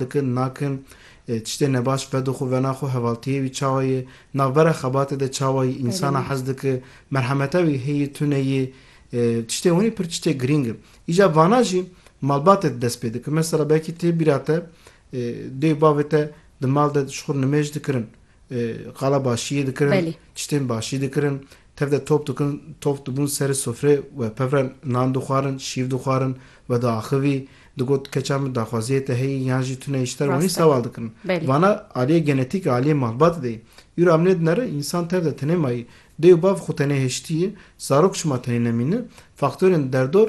dikin, nakin, tiştê nebaş vedo xwe vena xwe, hevaltiyê wî çawa ye, navbera xebatê de çawa yî, însana hez dike, merhemeta wî heye, tune ye, tiştê hûnî pir tiştê girîng in. Îja vana jî malbatê di dest pê dikin. Mesela belkî tê bîra te dê û bavê te di mal de ji xwe nimêj dikirin. Qala başiyê dikirin, tiştên başî dikirin, tev de top dikin, top dibûn serê sofrê we pev re nan dixwarin, şîv dixwarin, we diaxivî, digot keça min daxwaziyê te heye yan jî tune îşter wanî sewal dikin. Vana aliyê genetîk e, aliyê malbatê de yê. Îro em nêdinere însan tev de tenê mayî, dê û bav xwe tenê hiştî yê, zarok şima tenê nemîne, faktorên derdor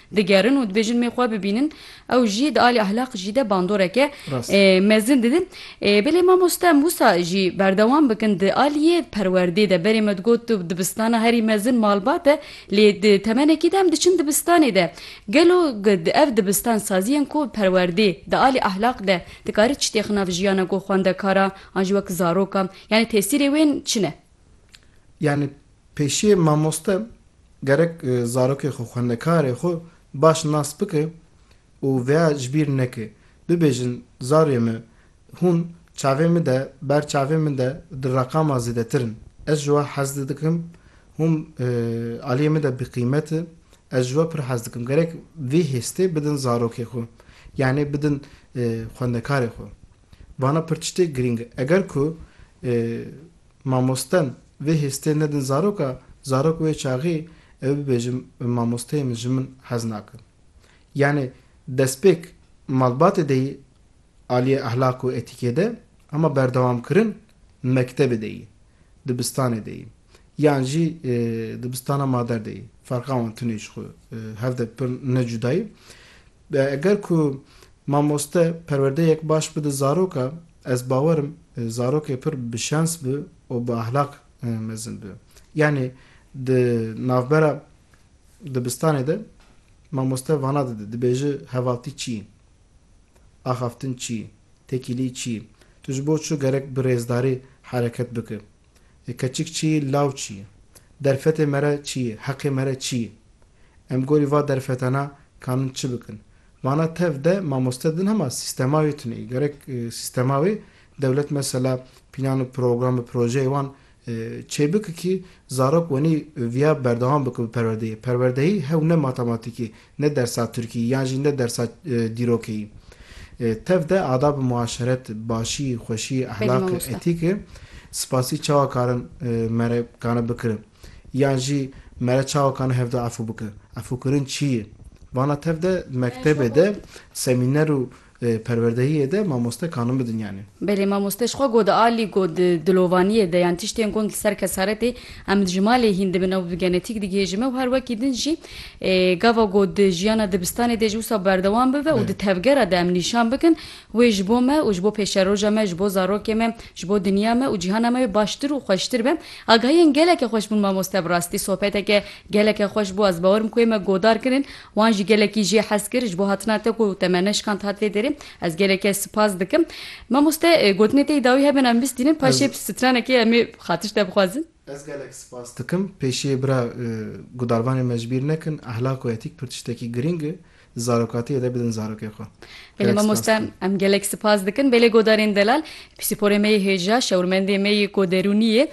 Digerin û dibêjin mê xwe bibînin ew jî di alî ehlaq jî de bandoreke mezin didin. Belê mamoste em wisa jî berdewam bikin di aliyê perwerdê de berê me digot tu dibistana herî mezin malbat e lê di temenekî de em diçin dibistanê de. Gelo di ev dibistan saziyên ku bi perwerdê di alî ehlaq de dikarî çi têxin nav jiyana ku xwendekara an jî wek zaroka yanî tesîrê wên çi ne? Yani pêşiyê mamoste gerek zarokê xwe, xwendekarê xwe baş nas bike û vêya ji bîr neke. Bibêjin zarê me hûn çavê min de, ber çavê min de di reqama zêdetir in. Ez ji we hez dikim, hûn aliyê min de biqîmet in, ez ji we pir hez dikim. Gerek vê hêstê bidin zarokê xwe. Yani bidin xwendekarê xwe. Vana pirtiştê girîng e. Eger ku mamosten vê hêstê nedin zaroka, zarok wê çaxî ew bibêjin bi mamosteyê min ji min hez nakin. Yanî destpêk malbatê de yî aliyê ehlaq û etîkê de hema berdewamkirin mektebê de yî, dibistanê de yî yan jî dibistana mader de yî. Ferqa wan tunê ji xwe hev de pir ne cuda yî. Dê eger ku mamoste perwerdeyek baş bide zaroka, ez bawerim zarokê pir bi şens bi û bi ahlak mezin bi. Yanî di navbera dibistanê de mamoste vana dide, dibêje hevaltî çi yî? Axaftin çi yî? Tekîlî çi yî? Tu ji bo çi gerek bi rêzdarî hereket bike? Keçik çi ye, law çi ye? Derfetê me re çi ye, heqê me re çi ye? Em gorî va derfetana kanin çi bikin? Vana tev de mamoste din hema sîstema wê tune ye. Gerek sîstema wê dewlet mesela pînan û program û projeyê wan çê bike kî zarok wenî viya berdewam bike bi perwerdeyê. Perwerdeyî hew ne matematîkê, ne dersa tirkî yan jî ne dersa dîrokî tev de adab-ı muaşeret, başî, xweşî, ehlaq, etîk spasî çawa karin mere kane bikirin yan jî mere çawa kane hevdo efû bikin? Efûkirin çî yi? Vana tev de mektebê de semîner û. Li perwerdehiyê de mamoste kanin bidin yanî? Belê mamoste ji xwe got di alî got di dilovaniyê de yan tiştên gund li ser kesaretê em ji malê hîn dibin ew bi genetik digihêjin me û her wekî din jî gava got di jiyana dibistanê de ji wisa berdewam bibe û di tevgera de em nîşan bikin wê ji bo me û ji bo pêşeroja me ji bo zarokê me ji bo dinya me û cîhana me wê baştir û xweştir be. Agahiyên geleke xweş bûn mamoste bi rastî sohbeteke geleke xweş bû ez bawer im ku wê me godar kirin Wan jî gelekî jê hez kir ji bo hatina te ku te me neşkand hat vê derê. Ez gelekê sipas dikim. Mamoste gotinê te yî dawî hebin em bistînin paşê Ez- stranekê em ê xatir ji te bixwazin. Ez gelek sipas dikim. Pêşiyê bira gudarvanên me ji bîr nekin. Ehlak û etîk pir tiştekî girîng e. Di zarokatiyê de bidin zarokê xwe. Belê Gelek sipas mamoste dikim. em gelek sipas dikin. Belê godarên delal. Pîsporê me yê hêja, şewirmendê me yê ku derûnî yê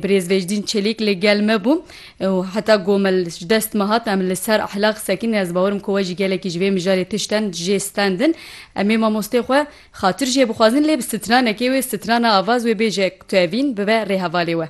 birêz Vecdîn Çelîk li gel me bû û heta ku me ji dest me hat em li ser Ehla qise kirin. Ez bawer im ku we jî gelekî ji vê mijarê tişten jê stendin. Em ê mamosteyê xwe xatir jê bixwazin lê bi stranekê wê strana avaz wê bêje tevîn bibe rêhevalê we.